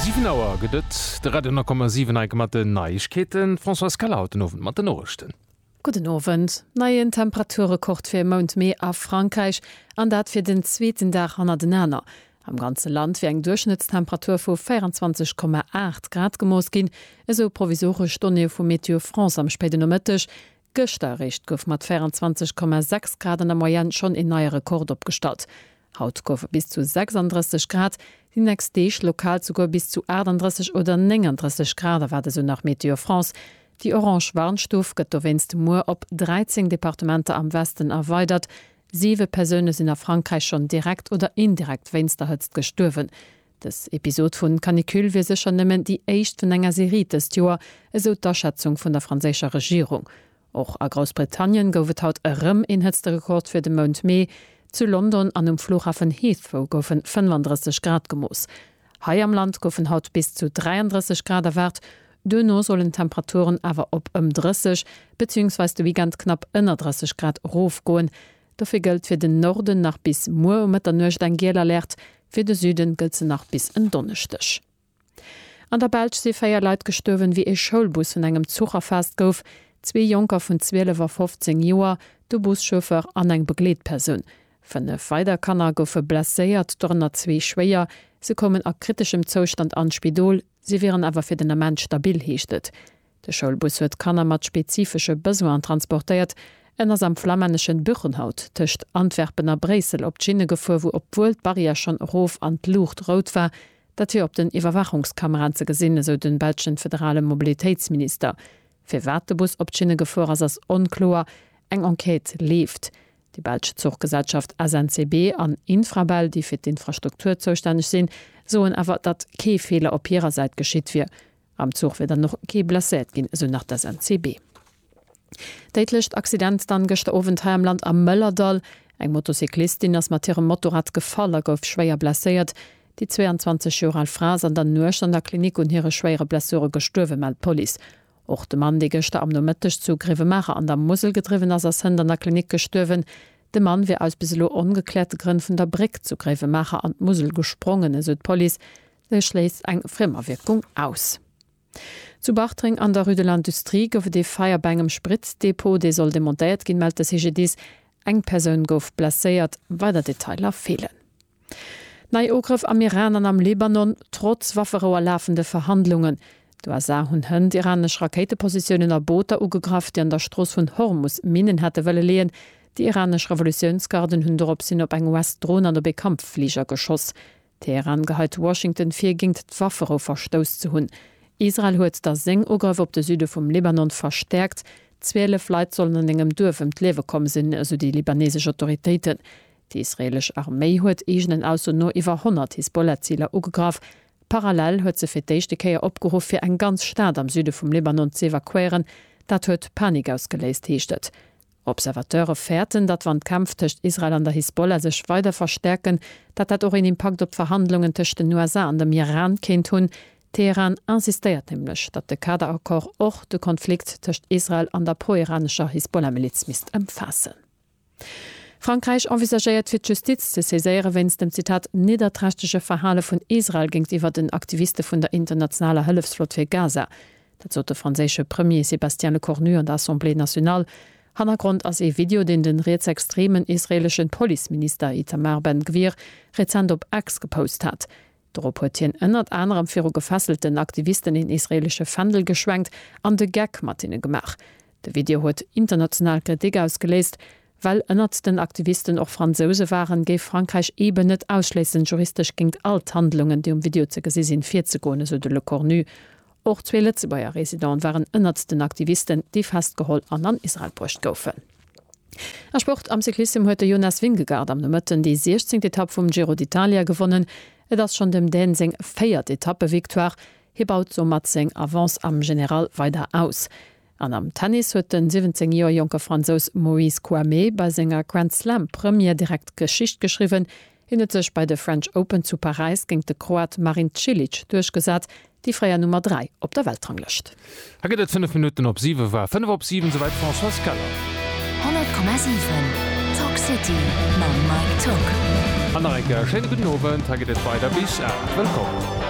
Siwen Auer gëtt et. De Radio 10,7 Eik mat den Neiegkeeten. D'Françoise Keller haut den Owend mat den Noriichten. Gudden Owend. Neien Temperaturrekord fir e Mount Mee a Frankräich, an dat fir den zweeten Dag hannertenaner. Am ganze Land wier eng Duerchschnëttstemperatur vu 24,8 Grad gemooss ginn, esou provisoresch Donnéeë vu Météo France am spéiden Nomëtteg. Gëschter eréischt gouf mat 24,6 Grad an der Moyenne schonn een neie Rekord opgestallt. Haut goufe bis zu 36 Grad, déi nächst Deeg lokal souguer bis zu 38 oder 39 Grad erwaart esou nach Météo France. Déi orange Warnstuf gëtt dowéinst muer op 13 Departementer am Westen erweidert. Siwe Persoune sinn a Frankräich schonn direkt oder indirekt wéinst der Hëtzt gestuerwen. Dës Episod vu Canicule wier sécher nëmmen déi éischt vun enger Serie dëst Joer, esou d'Aschätzung vun der franséischer Regierung. Och a Groussbritannien gouf et haut erëm een Hëtzterekord fir de Mount Mee. Zu London an um Flughafen Heathrow goufe 35 Grad gemooss. Hei am Land goufen haut bis zu 33 Grad erwaart, duerno sollen d'Temperaturen awer op ëm 30 beziéungsweis de Weekend knapp ënner 30 Grad erofgoen. Dofir gëllt fir den Norden nach bis muer um Mëtternuecht eng giel Alert, fir de Süden gëllt se nach bis en Donneschdeg. An der Belsch si 4 Leit gestuerwen, wéi ee Schoulbus vun engem Zuch erfaasst gouf. Zwee Jonker vun 12 a 15 Joer, de Buschauffeur an eng Begleetpersoun. Fënnef weider Kanner goufe blesséiert, dorënner zwee schwéier. Se koumen a kriteschem Zoustand an d'Spidol, si wieren awer fir den Ament stabil, heescht et. De Schoulbus huet Kanner mat spezifesche Besoinen transportéiert. En ass am flamänneschen Buchenhout tëscht Antwerpen a Bréissel op d'Schinne gefuer, wou obwuel d'Barrière schonn erof an d'Luucht rout war, dat wier op den Iwwerwaachungskameraen ze gesinn, esou de belschen federale Mobilitéitsminister. Firwat de Bus op d'Schinne gefuer ass, ass onkloer. Eng Enquête leeft. Déi belsch Zuchgesellschaft SNCB an Infrabel, déi fir d'Infrastruktur zoustänneg sinn, soen awer, datt kee Feeler op hirer Säit geschitt wier. Am Zuch wier dann och kee blesséiert ginn, esou nach d'SNCB. Déidlecht Accident dann gëschter Owend hei am Land am Mëllerdall. Eng Motocyclistin ass mat hirem Motorrad gefall a gouf schwéier blesséiert. Déi 22 Joer al Fra ass an der Nuecht an der Klinik un hire schwéiere Blessure gestuerwen, mellt d'Police. Och de Mann, dee gëschter am Nomëtteg zu Grevenmacher an der Musel gedriwwen ass, ass hënt an der Klinik gestuerwen. De Mann wier aus bis elo ongekläerte Grënn vun der Bréck zu Gréiwemaacher an d'Musel gesprongen, esou d'Police. E schléisst eng Frémawierkung aus. Zu Bartreng an der Rue de l'Industrie gouf et ee Feier bei engem Spritzdepot, dee soll demontéiert ginn, mellt de CGDIS. Eng Persoun gouf blesséiert, weider Detailer feelen. Nei Ugrëff am Iran an am Libanon, trotz Wafferou a lafende Verhandlungen. D'USA hunn hënt iranesch Rakéitepositiounen a Booter ugegraff, déi an der Strooss vun Hormus Minnen hätte wëlle leeën. Déi iranesch Revolutiounsgarden hunn doropshin op eng US-Dron an op ee Kampffliger geschoss. Teheran geheit Washington vir, géingt d'Wafferou verstouss ze hunn. Israel huet da seng Ugrëff op de Süde vum Libanon verstäerkt. 12 Leit sollen an engem Duerf ëm d'Liewe komm sinn, esou déi libanesesch Autoritéiten. Déi israeelesch Arméi huet eegenen Aussoen no iwwer 100 Hisbollah-Ziler ugegraff. Parallel huet se fir d'éischte Kéier opgeruff, fir eng ganz Stad am Süde vum Libanon z'evakuéieren. Dat huet Panik ausgeléist, heescht et. Observateure fäerten, datt wann d'Kämpf tëscht Israel an der Hisbollah sech weider verstäerken, datt dat och een Impakt op d'Verhandlungen tëscht den USA an dem Iran kéint hunn. Teheran insistéiert nämlech, datt de Kader-Accord och de Konflikt tëscht Israel an der pro-iranescher Hisbollah-Miliz misst ëmfaassen. Frankräich envisagéiert fir d'Justiz ze saiséiere wéinst dem, Zitat, nidderträchtege Verhale vun Israel géintiwwer den Aktiviste vun der internationaler Hëllefsflott fir Gaza. Dat sot de franséische Premier Sébastien Lecornu an der Assemblée nationale. Hannergrond ass ee Video, deen de rietsextremen israeeleschen Policeminister Itamar Ben Gvir rezent op X gepost hat. Dorop huet hien ënnert anerem viru gefesselten Aktivisten een israeelesche Fändel geschwenkt an de Geck mat hinne gemaach. De Video huet international Kritik ausgeléist. Well ënnert den Aktivisten och Fransouse waren, géif Frankräich eeben net ausschléissen, juristesch géingt all d'Handlungen, déi um Video ze gesi sinn, virzegoen, esou de Lecornu. Och zwee Lëtzebuerger Residente waren ënnert den Aktivisten, déi festgeholl an an Israel bruecht goufen. A Sport, Am Cyclissem huet de Jonas Vingegaard am Nomëtten déi siechzéngt Etapp vum Giro d'Italia gewonnen. Et ass schonn dem Dän seng véiert Etappe-Victoire. Hie baut soumat seng Avance am General weider aus. An am Tennis huet de 17 Joer jonke Fransous Maurice Kouamé bei senger Grand-Slam-Première direkt Geschicht geschriwwen. Hien huet sech bei de French Open zu Paräis géint de Kroat Marin Cilic duerchgesat, déi fréier Nummer 3 op der Weltranglëscht. Hei gëtt et 5 Minutten op 7 war 5 op 7 souwäit Françoise Keller. 100,7 Talk City mam Mike Tock. An nach eng Kéier e schéine gudden Owend. Hei gëtt et weider bis 8. Wëllkomm.